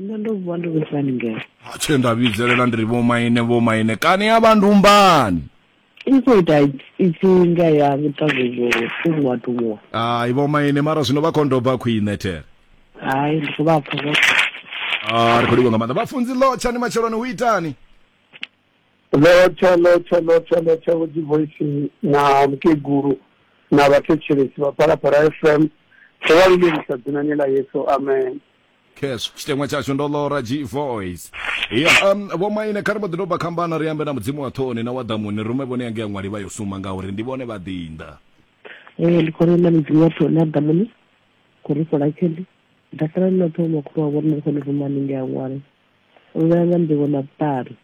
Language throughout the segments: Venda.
nṋe ndo vuwa ndi vhusani ngeo atshe nda vhidzelela ndi ri vhomaine vhomaine kani ya vha ndumbani i khou ita ipfi nga ya vhuṱavuzo tumuwa tumuwa hai vhomaine mara zwino vha khondoba khwine there hai ndi khou vha pfa vho Ah, ri khou livha nga maanḓa vhafunzi lotsha ni matsheloni hu itani lotsha lotsha lotsha lotsha vhudzi voice na mukegulu na vhathetshelesi vha phalaphala fm ro vha lumelisa dzinani ḽa yesu amen cash tshiteṅwa tshashu ndo lora g voice ya um, vho maine kha ri vho ḓi doba khambana ri ambe na mudzimu wa ṱhoni na wa ḓamuni rume vhone yange ya ṅwali vha yo suma ngauri ndi vhone vha ḓinḓa ee ndi khona na mudzimu wa ṱhoni na ḓamuni khou ri fhola tshende dakala ni na ṱhoho makhulu wa vhone ri khone rume hanenge ya ṅwali u vhea nga nḓivho na vhuṱali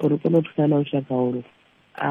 uri kone u thusa na lushaka holo a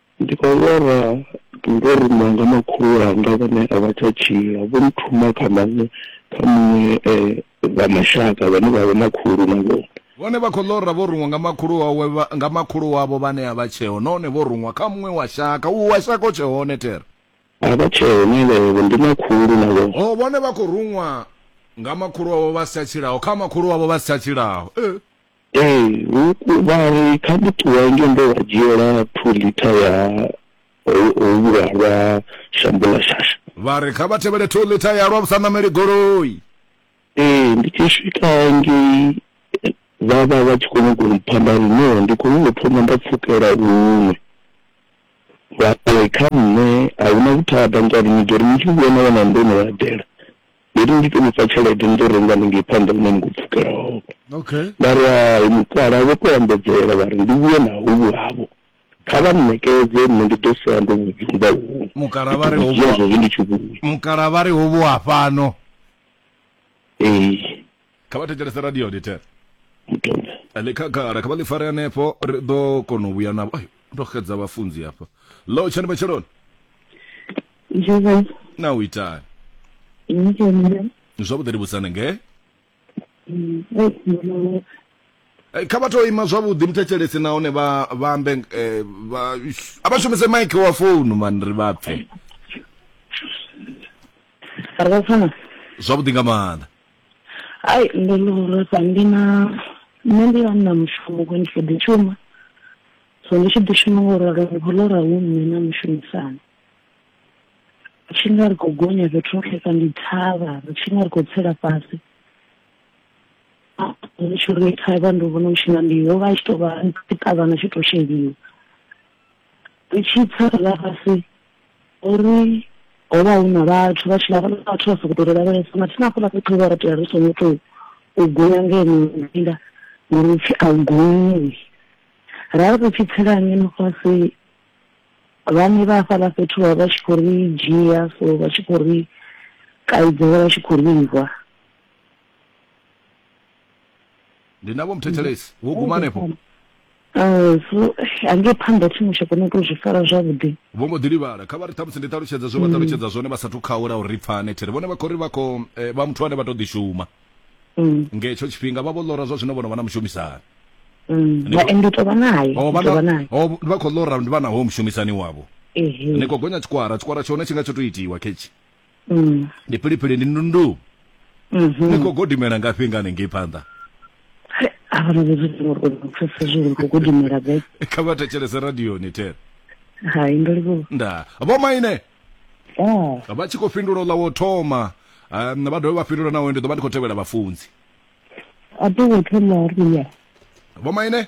Ndi khou lwala ndo rumiwa nga makhulu wanga vhane a vha tsha tshila, vho nthuma kha maṅwe kha muṅwe wa mashaka vhane vha vha na khulu na vhone. Vhone vha khou lora vho ruṅwa nga makhulu wawe nga makhulu wavho vhane a vha tsheho nahone vho ruṅwa kha muṅwe wa shaka, uhu wa shaka u tshe hone thero. A vha tsheho na levho ndi na khulu na vhone. Ho, vhone vha khou ruṅwa nga makhulu wavho vha si tsha tshilaho kha makhulu wavho vha si tsha tshilaho. Ee. Ee, hu vha ri kha ndi ṱuwa ngei ndo vha dzhiela two liter ya hovhula lwa shambo ḽa shasha. Vha ri kha vha tevhele two liter ya lwa vhu sa ṋameli goloi. Ee, ndi tshi swika ngei vha vha vha tshi khou nyaga u mpha nda ri no ndi khou nyaga u thoma nda pfukela u nwe. Vha ri kha nṋe a hu na vhuthada ngori ni ḓo ri ni tshi vhuya na wana ndo no eḓela. Ndo ri ndi to nifha tshelede ni ḓo renga haningei phanḓa hune ni khou pfukela hone. Okay. Nda ri hai mukalaha vho to ambedzela vha ri ndi vhuye na hovhu havho kha vha nṋekedze nṋe ndi ḓo sala ndo vhu dzumba huṅwe. Mukalaha vha ri hovhu. Ndi tshi vhuya. Mukalaha vha ri hovhu ha fhano. Ee. kha vha thetshelese radio lite mutumbe ḽi khagala kha vha ḽi fare hanefho ri ḓo kona u vhuya navho ayo ndo xedza vhafunzi hafha lo tshani matsheloni Joseph, na u itani ini kenile. zwavhuḓi ri vhusane nge Mm, eh, mbono. Eh, kha vha to ima zwavhuḓi muthetshelesi nahone vha vha ambe eh, vha ish, a vha shumise mike wa founu mani ri vha pfe Arabafana. zwavhuḓi nga maanḓa hai ndo no lwesa ndi na nṋe ndi vha na mushumo ko ndi kho ḓi shuma so ndi tshi ḓi shuma ngo ralo ndi khou lora hu nṋe na mushumisani ri tshi nga ri khou gonya fhethu hoṱhe ka ndi thavha ri tshi nga ri khou tsela fhasi ndi tshi ri thavha ndo vhona u tshi nga ndi yo vha tshi tou vha ṱavhana tshi tou sheliwa ri tshi tsa ra vha fhasi uri ho vha hu na vhathu vha tshi vha vhona vhathu vha sokou tou ri lavhelesa mathina hafhaḽa fhethu vha ri tea ri songo tou u gonya ngeno nda ngori u pfhi a u gonyiwi ra ri tshi tsela ngeno fhasi vhane vha hafhaḽa fhethu vha vha tshi khou ri dzhia so vha tshi khou ri kaidza vha vha tshi khou livha ndinavo muthetshelesi wo gumanepo Uh, so hange phanḓa tshiṅwe tsha kona uto zwi fara zwavhuḓi vho mbo ḓi livhala kha vha ri ṱhamusi ndi ṱalutshedza zwe vha ṱalutshedza zwone vha sathu khaula uri ri pfane thiri vhone vha khou ri vha khou eh, vha muthu ane vha tou ḓishuma Mm, nga hetsho tshifhinga vha vho ḽora zwa zwino vhono vha na mushumisani mm. Ndi- Vha- ende u tovha naye Oh, u vha tovha na- naye oh, vha khou ḽora ndi vha naho mushumisani wavho ehe ni khou gonya tshikwara tshikwara tshone tshi nga tsho tou itiwa khetshi Mm. ndi philiphili ndi ndundu Mhm. ni khou godimela ngafhi nga hanengei phanḓa Hai, hava na vhudzudzisi ngori kona u pfesesa zwi uri khou gudimela gai kha vha thetshelese radioni tere hai ndo livhuwa nda vho maine Ah, vha tshi khou fhindula ḽa wo thoma um, vha dovhe vha fhindula nawe ndi ḓo vha ndi khou tevhela vhafunzi a to ngo thoma ri ya vho maine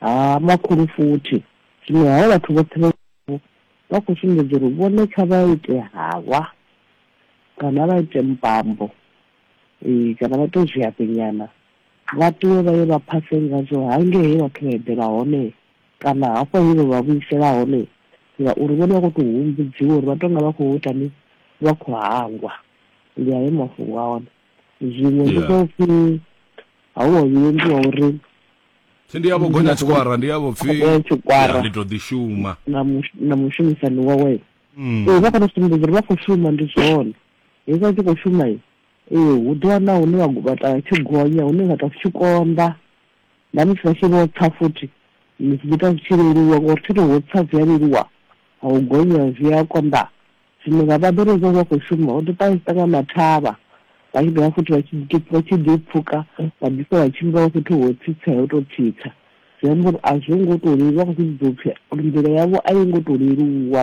Ha makhulu futhi. Zwino havha vhathu vhoṱhe vha vho vha khou sumbedza uri vhone kha vha ite halwa kana vha ite mbambo ee kana vha tou zwiafhenyana vha ṱuwe vha ye vha phase ngazwo hangei he vhathu vha eḓela hone kana hafho he vha vha vhuisela hone ngauri vhone vha khou tou humbudziwa uri vha tou nga vha khou ita ni vha khou hangwa ndi ayo mafhungo a hone zwiṅwe ndi zwa upfhi ha u wa vhuendi wa uri pfi ndi yavho gonya tshikwara ndi yavho pfi Gonya tshikwara. ya, ndi to ḓi shuma na mush- na mushumisani wawe Mm. ee vha kona sumbedza uri vha khou shuma ndi zwone hezwi vha tshi khou shuma i ee hu ḓo wana hune vha vhata tshi gonya hune vha ta tshi konḓa na musi vha tshi vho tsa futhi zwi ita zwi tshi leluwa ngori thi to ho tsa zwi a leluwa ha u gonya zwi a konḓa Zwino nga vha ḓo ri hezwo vha khou shuma, vha ḓo ṱahisa nga mathavha, vha tshi dovha futhi vha tshi ḓi vha tshi ḓi pfuka vha ḓi sa vha tshimbilaho fhethu ho tsitsa ho tou tsitsa. Zwi amba uri a zwo ngo tou leluwa, vha khou zwi vhudza upfi uri nḓila yavho a yo ngo tou leluwa,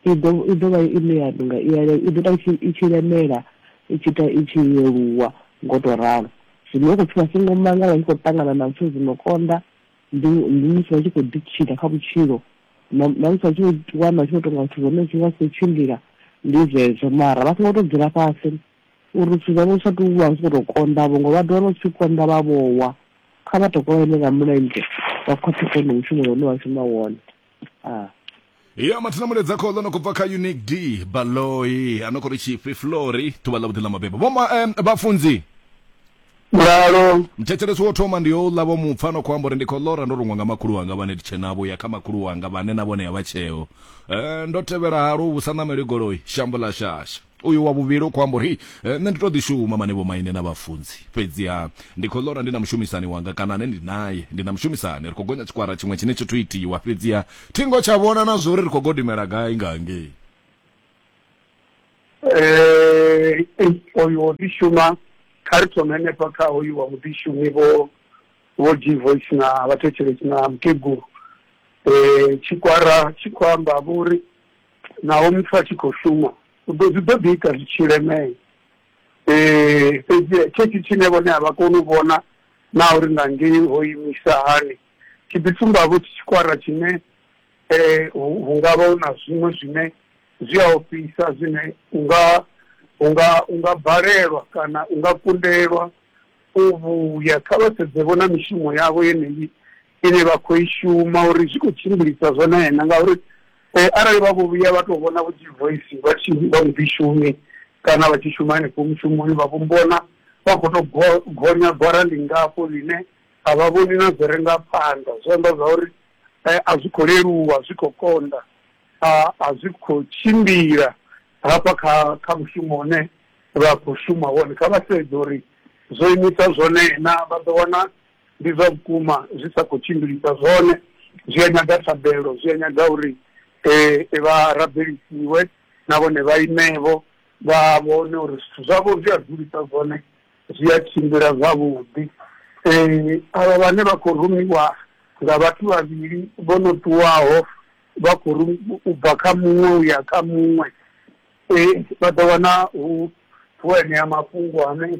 i ḓo i ḓo vha ine ya tou nga i ya i ḓo ita i tshi i tshi lemela i tshi ita i tshi leluwa ngo tou ralo. Zwino hu khou pfi vha songo mangala vha tshi khou ṱangana na zwithu zwi no konḓa, ndi ndi musi vha tshi khou ḓitshila kha vhutshilo na na musi vha tshi khou ḓi wana vha tshi khou tonga zwithu zwone zwi nga si khou tshimbila ndi zwezwo mara vha songo tou dzula fhasi uri zwithu zwavho zwi sa tou vha zwi khou tou konḓa vho ngo vha ḓo wana zwi tshi konḓa vha vhowa kha vha tokola ine nga mulenzhe vha khwaṱhise hone mushumo une vha shuma wone ah. ya mathina muledza khoḽo no khou bva kha unique d baloi a no khou ri tshifhi flori ḓuvha ḽa vhuḓi ḽa mabebo vhoma um, vhafunzi lalo mthetshelesi wo thoma ndi yo uḽa vho mupfa no khou amba uri ndi khou ḽora ndo rungwa nga makhulu wanga vhane ndi tshenavho ya kha makhulu wanga vhane na vhone ya vha tsheo um ndo tevhela halo vhusa ṋameli goloi shambo ḽa shasha Uyu wa vhuvhili u khou amba uri, Nṋe ndi tou ḓi shuma mane vhomaine na vhafunzi. Fhedziha ndi khou ḽora ndi na mushumisani wanga kana ane ndi nae. Ndi na mushumisani, ri khou gonya tshikwara tshiṅwe tshine tshi thu itiwa, fhedziha thi ngo tsha vhona na zwo ri ri khou godimela gai nga hangei. Ee, oyu wo ḓi shuma. Kha ri thome henefha kha hoyu wa vhuḓishumi, Vho Vho G-Voice na vhathetshelesi na mukegulu. Tshikwara tshi khou amba, vho ri, Naho muthu a tshi khou shuma, u ḓo zwi ḓo ḓi ita zwi tshi lemea. Ee, fhedzi tshetsho tshine vhone a vha koni u vhona naa uri nga ngei ho imisa hani, tshi ḓi sumbavho tshi tshikwara tshine hu hu nga vha hu na zwiṅwe zwine zwi a ofhisa zwine u nga u nga u nga balelwa kana u nga kundelwa u vhuya. Kha vha sedzevho na mishumo yavho yeneyi. ine vha khou i shuma uri zwi khou tshimbilisa zwone na ngauri eh, arali vha vho vhuya vha tou vhona vhutshi voice vha tshi vha mudishumi kana vha tshi shuma henefho mushumoni vha vhombona vha khou tou gonya gwara lingafho ḽine a vha vhoni na zwi re nga phanḓa zwi amba zwa uri eh, a zwi khou leluwa zwi khou konḓa a zwi khou tshimbila hafha kha kha mushumo une vha khou shuma wone kha vha sedze uri zwo imisa zwone na vha ḓo wana ndi zwa vhukuma zwi sa khou tshimbilisa zwone zwi a nyaga thabelo zwi a nyaga uri um vha rabelisiwe na vhone vha imevho vha vhone uri zwithu zwavho zwi a dzulisa zwone zwi a tshimbila zwavhuḓi um avha vhane vha khou rumiwa nga vhathu vhavhili vho no ṱuwaho vha khou ri u bva kha muṅwe u ya kha muṅwe um vha ḓo wana hu hu enea mafhungo ane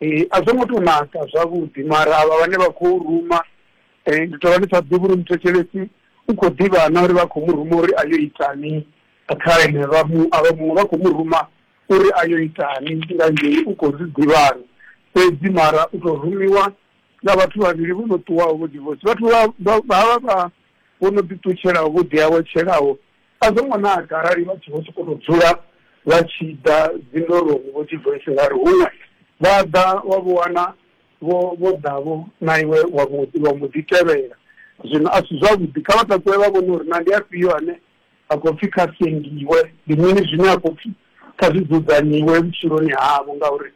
Ee, a zwo ngo tou naka zwavhuḓi mara avha vhane vha khou ruma um ndi tou vha ndi sa ḓivhi uri muthetshelesi u khou ḓivha na uri vha khou mu ruma uri a yo itani kha ene vha mu a vha muṅwe vha khou mu ruma uri a yo itani nga ngei u khou zwi ḓivhana fhedzi mara u tou rumiwa nga vhathu vhavhili vho no ṱuwaho vho divosi vhathu vha vha vha vha vho no ḓiṱutshelaho vho ḓiawetshelaho A zwo ngo naka arali vha tshi vho sokou tou dzula vha tshi ḓa dzindoloni vho tshi bva isingari huṅwe vha ḓa wa vho wana vho vho ḓa-vho na iwe wa mbo ḓi wa mbo ḓi tevhela. Zwino a si zwavhuḓi. Kha vha takuwe vha vhone uri naa ndi afhio ane a khou pfi kha sengiwe, ndi mini zwine a khou pfi kha zwi dzudzanyiwe vhutshiloni havho ngauri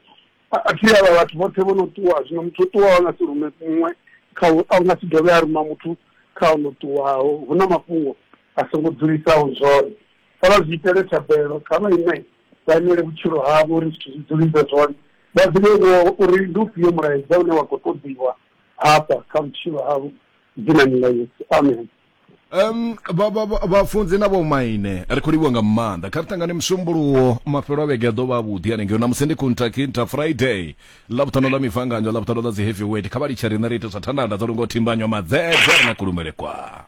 A a thi avha vhathu vhoṱhe vho no ṱuwa, zwino muthu o ṱuwaho a nga si rume muṅwe kha u, a nga si dovhe a ruma muthu kha o no ṱuwaho. Hu na mafhungo a songo dzulisaho zwone. Kha vha zwi itele thabelo, kha vha ime vha imele vhutshilo havho uri zwithu zwi dzulise zwone, vha ḓivhe vho uri ndi ufhio mulaedza une wa khou ṱoḓiwa hafha kha vhutshilo havho, Dzinani ḽa Yesu. Amen. Um, vhafunzi na vhomaine ri khou livhiwa nga maanḓa kha ri tangane musumbuluwo mafhelo a vhege a ḓo vha avhuḓi hanengeo namusi ndi kuntakinta friday ḽavhuṱhano ḽa mifanganyo ḽavhuṱhano ḽa dzi heavy wet kha vha litshe riṋe ri ite zwa thandanda dzo lungo thimbanywa madzedze ri na kulumele kwa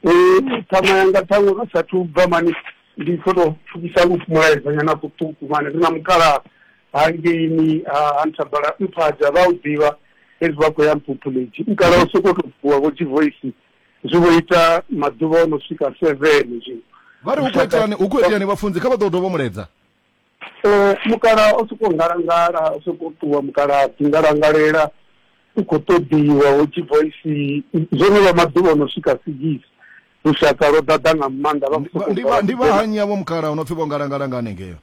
ṱhama yanga ṱhaṅwe ro sathu bva mani ndi kho to pfukisa lufu mulaedzanyana kuṱuku mani ri na mukalaha hangeini ha nthabala mphaja vha u ḓivha hezwi vha khou ya mphuphuledzhi mukala o sokou tou vuwa vho dzivoisi zwi vho ita maḓuvha o no swika seven zwi vha ri hu khou iteani hu khou iteani vhafunzi kha vha ḓo dovha muledza Eh, mukala o sokou ngalangala o sokou ṱuwa mukala ḓi ngalangalela u khou ṱoḓiwa ho dzivoisi zwo no vha maḓuvha o no swika sigisi lushaka lwo ḓaḓa nga maanḓa vha khou Ndi- sokou ndi vha- ndi vha hanyi avho mukala o no pfi vho ngalangala nga hanengeyo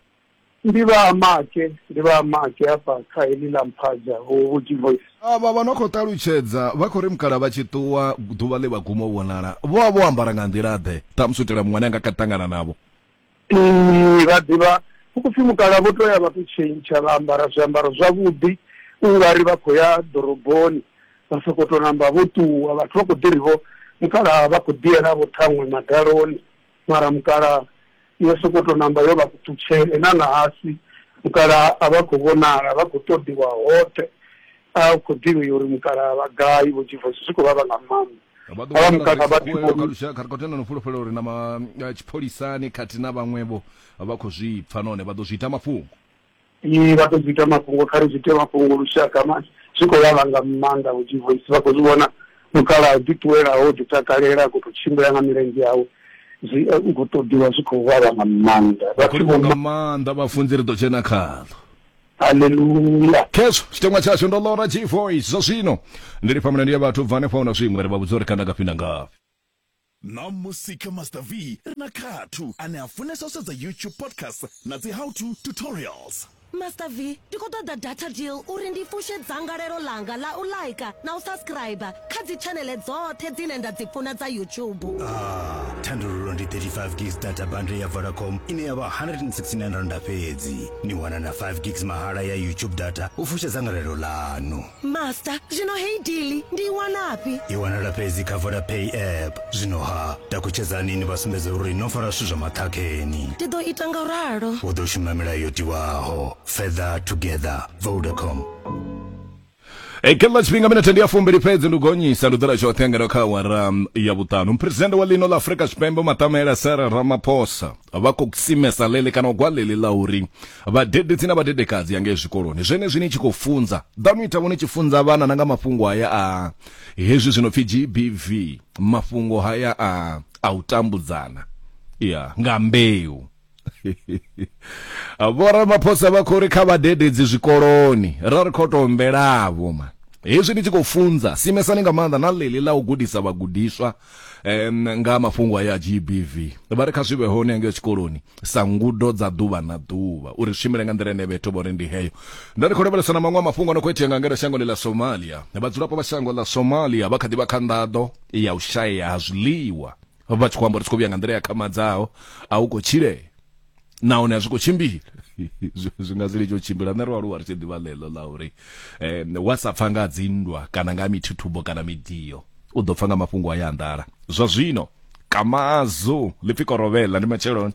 Ndi vha Make, ndi vha Make hafha kha heḽi ḽa Mphaja hu Vhuji Voice. Avha vha no khou ṱalutshedza vha khou ri mukalaha vha tshi ṱuwa ḓuvha ḽe vha guma u vhonala vho vha vho ambara nga nḓila-ḓe, ṱhamusi u itela muṅwe ane a nga kha ḓi ṱangana navho? Ee, vha ḓivha. Hu khou pfi mukalaha vho tou ya vha tou tshentsha vha ambara zwiambaro zwavhuḓi u nga ri vha khou ya ḓoroboni, vha sokou tou namba vho ṱuwa. Vhathu vha khou ḓi ri-vho, mukalaha vha khou ḓi yela-vho ṱhaṅwe madaloni. mara mukalaha i yo sokou tou namba yo vha kuṱutshele na ṋahasi mukalaha a vha khou vhonala, vha khou ṱoḓiwa hoṱhe. A u khou ḓivhei uri mukalaha vha gai vho Jivo, hezwi zwi khou vhavha nga maanḓa. Vha ḓo wanala vha tshi khou kha lushaka kha ri khou tenda no fhulufhela uri na ma tshipholisani khathihi na vhaṅwevho vha khou zwi pfa nahone vha ḓo zwi ita mafhungo. i vha ṱoḓi ita mafhungo kha ri zwi ite mafhungo lushaka mani zwi khou vha vhanga maanḓa vho divoisi vha khou zwi vhona mukalaha ḓi ṱuwelaho ḓi takalela a khou tou tshimbila nga milenzhe yawe zwi eh, u khou ṱoḓiwa zwi khou vha vhanga maanḓa vhathu vho nga maanḓa vhafunzi ri ḓo dzhena khaḽo haleluya khezwo tshiteṅwa tshashu ndo lora g voice zwa zwino ndi lifha mulandu ya vhathu bva hanefha hu na zwiṅwe ri vha vhudza uri kanda ngafhi na ngafhi Ṋamusi kha Master V ri na Khathu ane a funesa u sedza YouTube podcasts na dzi how to tutorials. Master V, ndi khou ṱoḓa data deal uri ndi fushe dzangalelo ḽanga ḽa u ḽaika na u saskiraiba kha dzitshaneḽe dzoṱhe dzine nda dzi funa dza YouTube. Aah, thandululo ndi 35 gigs data bundle ya Vodacom ine ya vha R169 fhedzi. Ni wana na 5 gigs mahala ya YouTube data u fusha dzangalelo ḽaṋu. master zwino heyi dili ndi i wanafhi i wanala fhedzi kha vodapay app zwino ha takutshedzani ni vha sumbedze uri no fara zwithu zwa maṱhakheni ndi ḓo ita nga ralo u ḓo shuma milayo yo tiwaho further together vodacom E, kha ḽa tshifhinga minethe ndi ya fumbili fhedzi ndi gonyisa ndi ḓola tshoṱhe ngeno kha awara mm, ya vhuṱanu muphuresidennde wa ḽino ḽa afurika tshipembe matamela sara ramaphosa vha khou simesa ḽeḽi kana u gwa ḽeḽi ḽa uri Vhadededzi na vhadedekadzi ya ngei zwikoloni zwenezwi ni tshi khou funza, ḓanu itavho ni tshi funza vhana na nga mafhungo haya a hezwi zwi no pfi GBV, mafhungo haya a a u tambudzana ya nga mbeu. Vho Ramaphosa vha khou ri kha vhadededzi zwikoloni ra ri khou tou mbelavho ma hezwi ni tshi khou funza simesani nga maanḓa na ḽeḽi ḽa u gudisa vhagudiswa um nga mafhungo aya a GBV vha ri kha zwi vhe hone hangeyo tshikoloni sa ngudo dza ḓuvha na ḓuvha uri zwi shumile nga nḓila ine vhethu vhone ndi heyo nda ri khou lavhelesa na maṅwe a mafhungo a no khou itea nga ngeno shangoni ḽa somalia vhadzulapo vha shango ḽa somalia vha kha ḓi vha kha nḓaḓo ya u shayea ha zwiḽiwa vha tshi khou amba uri tshi khou vhuya nga nḓila ya khamadzaho a hu khou tshilea nahone a zwi khou tshimbila zwi nga si litsho u tshimbila nṋe ri aluwa ri tshi ḓivha ḽeḽo ḽa uri um wa sa pfa nga dzinndwa kana nga mithuthubo kana midio u ḓo pfa nga mafhungo a ya anḓala zwa zwino kamazo ḽipfi korovhela ndi matsheloni